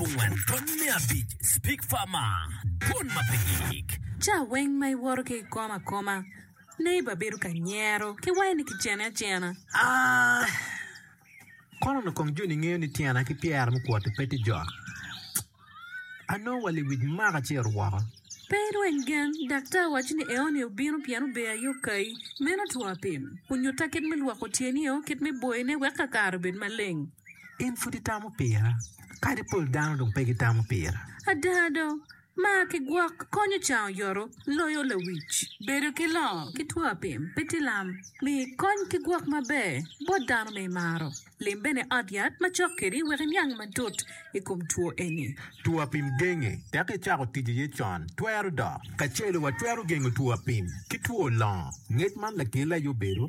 Abongwen Rwony me abic Speak farmer Dwon ma pe gik. Ca weng ma iwoto ki ikom akoma, neighbor bedo ka nyero ki wai ni ki cene acena. Aah Kono onongo kong joni ngeyo ni tyena ki pyera mukwoti pe tye jok. Anongo wa liwic maka ci orwoko. Pe irweny gen, daktar waco ni eoni obino pien ober aye okayi. Meno two apim. Onyutta kit me lwoko tyeni-o, kit me boyone wek kakare obed maleng. In pud itamo pira, kadi pol dano dong pe gitamo pira. Ada do, mar ki gwok konyo can oyoto loyo lawic. Bedo ki longo ki two apim pe tye lam. Mii kony ki gwok maber bot dano ma imaro. Lim bene ot yat macok kedi wek iniang matut i kom two eni. Two apim genge dok icako tic iye con twero dok. Kacelo watwero gengo two apim ki two longo. Ngec man lakele aye obedo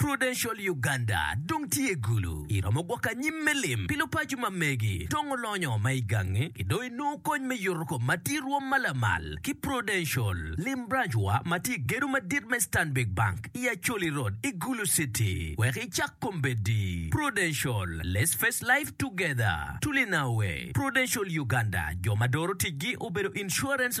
Prudential Uganda dong tye gulu iromo gwoko anyim me lim pi lupaco ma megi dong olonyo ma igangi ki dong inongo kony me yuto kom ma tye irwom ma lamal ki Prudential. Lim branch wa ma tye igedo madit me Stanbic Bank i Acholi Road i Gulu City wek icak kombeddi. Prudential, Let's face life together, Tuli Nawe, Prudential Uganda jo ma doro ticgi obedo insurance,